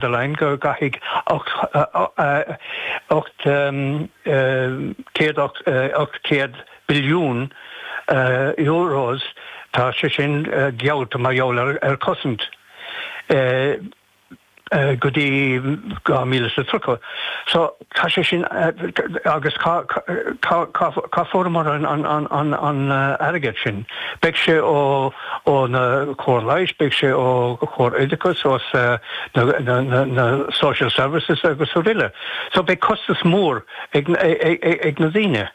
der Leyen go gcaithfidh 800 billiún Euros, tá sé sin geallta mar gheall ar cosaint, go dtí 2030. Tá sé sin agus cá fuaireamar an airgead sin? Beidh sé ó na cóir leighis, beidh sé ó chóir oideachas, ó na Social Services agus araile. So beidh costas mór ag na daoine.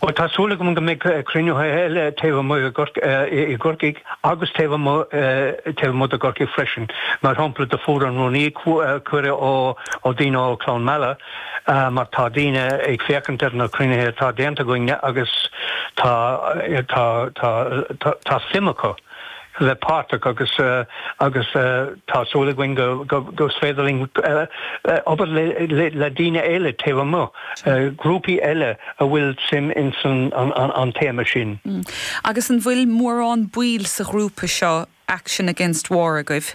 Bhuel tá súil agam go mbeidh cruinnithe eile taobh amuigh i gCorcaigh agus taobh amuigh de gCorcaigh freisin. Mar shampla do fuair an Rúnaí cuireadh ó daoine ó Cluain Meala mar tá daoine ag féachaint ar na cruinnithe atá déanta againn agus tá suim acu. a bheith páirteach agus agus tá súil againn go go is féidir linn obair le daoine eile taobh amuigh, grúpaí eile a bhfuil suim in san an téama sin. Agus an bhfuil mórán baill sa ghrúpa seo Action Against War agaibh?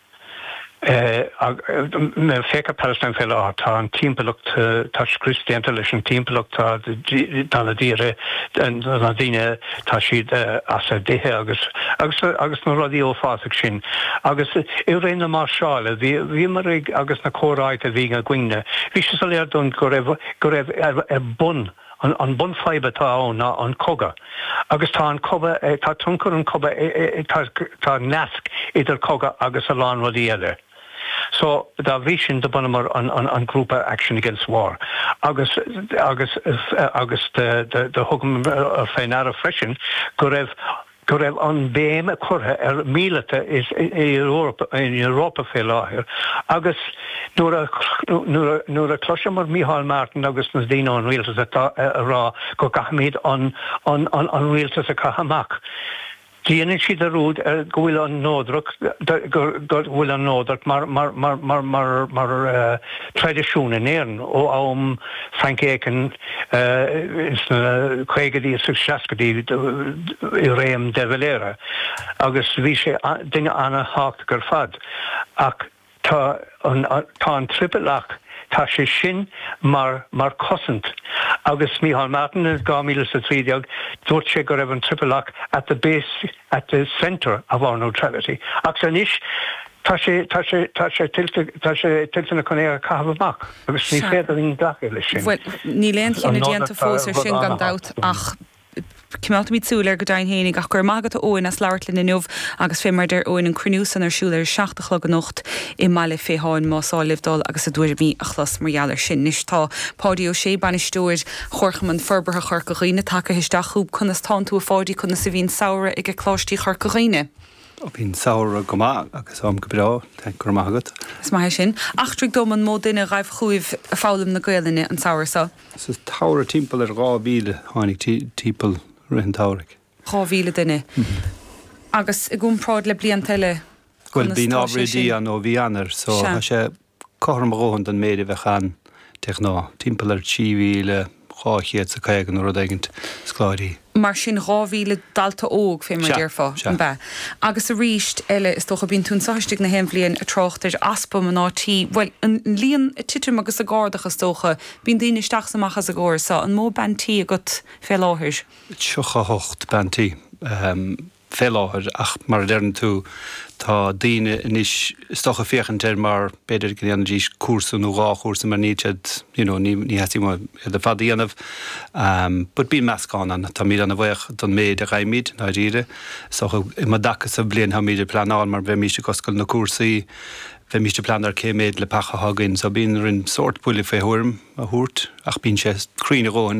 Féach Palestine fé láthair. Tá an timpeallacht, tá scrios déanta leis an timpeallacht, tá tá na daoire, na daoine, tá siad as a dtithe agus agus agus na rudaí uafásach sin. Agus i ré na máirseála bhí bhíomar ag agus na comhráite a bhí againn, bhí sé soiléir dúinn go raibh go raibh ar bun An bunfhadhb atá ann ná an cogadh agus tá an cogadh, tá tionchar an cogadh, tá nasc idir cogadh agus a lán rudaí eile. So dá bhrí sin do bhunamar an grúpa Action Against War agus, agus, agus do thugamar fé ndeara freisin go raibh, go raibh an béim curtha ar mhíleata insan Eoraip fé láthair agus nuair a chloiseamar Micheál Martin agus na daoine ón Rialtas ag rá go gcaithfimid an Rialtas a chaitheamh amach, déanann siad dearúd go bhfuil an neodracht go bhfuil an neodracht mar traidisiún in Éirinn ó am Frank Aiken. sna caogaidí is sna seascaidí i réim de Valera agus bhí sé duine an-thábhachtach ar fad ach tá an triple lock tá sé sin mar cosaint agus Micheál Martin in 2013 dúirt sé go raibh an triple lock at the base, at the centre of our neutrality agus anois Tá sé, tá sé, tá sé tuillte, tá sé tuillte acu iad a chaitheamh amach agus ní féidir linn glacadh leis sin. Bhuel, níl aon chinneadh déanta fós air sin gan dabht ach coimeádfaimid súil air go deimhin fhéinig. Ach go raibh maith agat a Eoghain as labhairt linn inniu agus fé mar a deir Eoghain an cruinniú san ar siúl ar a seacht a chlog anocht i mBaile Féitheáin más áil libh dul agus a dtuairimí a chlos mar gheall air sin. Anois tá Páidí Ó Sé, Bainisteoir Chomharchumann Forbartha Chorca Dhuibhne tagtha isteach chugainn. Conas tánn tú a Pháidí, conas a bhí an samhradh aige Coláistí Chorca Dhuibhne? Bhí an samhradh go maith agus um go breá, thank go raibh maith agat. Is maith é sin. Eachtraigh dom an mó duine a ghaibh chugaibh ag foghlaim na Gaolainne an samhradh so? Sa tsamhradh timpeall ar 2000 tháinig timpeall i rith an tsamhraidh. 2000 duine? Agus i gcompráid le blianta eile conas tá sé sin? Bhuel bíonn na hábhar oidí ann ó mhí Eanáir so tá sé cothrom a dhóthain leis an méid a bhíonn de ghnáth, timpeall ar 3,200 is a 50 nó rud éigint scoláirí. Mar sin, 2,000 dalta óg fé mar a déarfá, an b'ea? Agus arís eile, is dócha, bíonn tú anso istigh na haon bhliain ag trácht ar easpa mnáibh tí, bhuel, an líon ag titim agus ag ardach agus is dócha, bíonn daoine isteach is amach as an gcóras so, an mó bean tí atá agat fé láthair? 38 bean tí. fé láthair ach mar a deireann tú tá daoine anois is dócha ag féachaint air mar b'fhéidir go ndéanfaidís cúrsa nó dhá chúrsa mar níl siad you know ní ní theastaíonn uathu iad ar fad a dhéanamh ehm but bíonn meascán ann táimid ana-bhaoch don méid a fhaighimid i ndáiríre so um an dtaca so bliain táimid ag pleanáil mar bheimís ag oscailt na cúrsaí bheimís ag pleanáil cé méid leapacha athá againn so bíonn roinn sórt buille fé thuairim a thabhairt ach bíonn sé cruinn a dhóthain